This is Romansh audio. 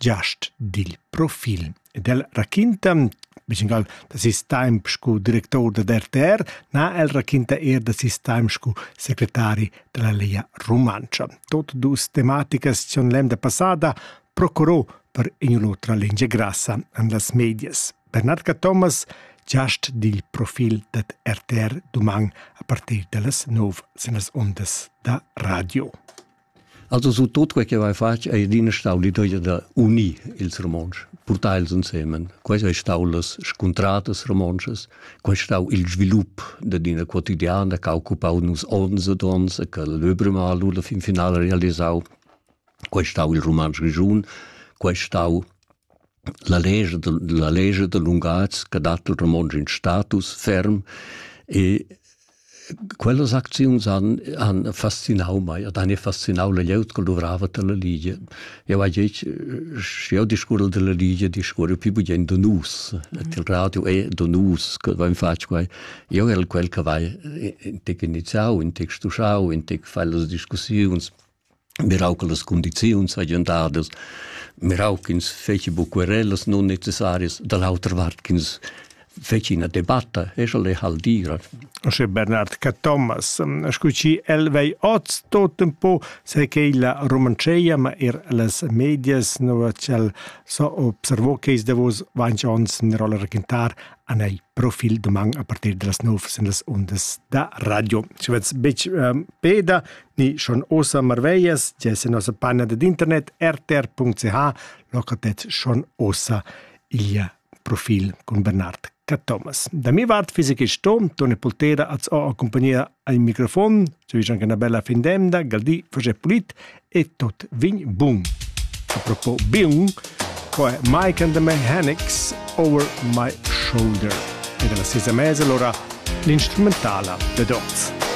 giast dil profil. Ed el raquinta da ses temp sco director da RTR, na, el raquinta er da ses temp sco secretari dalla Lia Rumantscha. Tot dus tematicas tion l'emda passada procurò per in'otra lingia grassa en las medias. Bernard Thomas, giast dil profil dat RTR duman a partir dallas 9 sen las ondas da radio. Also su tot quei che vai fatg ei adina stau l'idea da unir ils romontsch, portar els ensemen. Quei ei stau las scuntratas romontschas, quei ei stau il svilup da dina quotidiana che ha occupau nus onns ed onns e che l'Öbrimal alla fin finala realisau. Quei ei stau il romontsch grigiun, quei ei stau la legge de, la legge de Lungaz che dat il romontsch in status ferm e Quellas acziuns han, han fascinau mei ed han fascinau la glieud che luvrava dalla Ligia. Jau hai detg, sche jau discurrel dalla Ligia, discurre più bugen da nus. Mm. Il radio è da nus che vain fatg quai. Io el quel che vai in tec iniziau, in tec stuschau, in tec fai las discussiuns mirau che las condiziuns hagien dadas, mirau ch'ins feci bu querellas non necessarias, da l'autra vart ch'ins feci ina debatta, e sche le hal dira. Sche Bernard Cathomas, scu ci el vei oz tot un po, se che la romanceia, ma er las medias, no cel so observo che is davos vanci ons in rolla raquintar an ei profil doman a partir de las 9 sen las undas da radio. Ci vets bec um, peda, ni schon osa marveglias, ti es in nossa panna dad internet rtr.ch, locatez schon osa il profil con Bernard Cathomas. Da mi vart fisi che sto, Tone Poltera az ho accompagnia al microfon, ci vige anche una bella fin d'emda, galdi face pulit e tot vin bun. A propos bun, qua è Mike and the Mechanics Over My Shoulder e dalla sesa mesa allora l'instrumentala The Dots.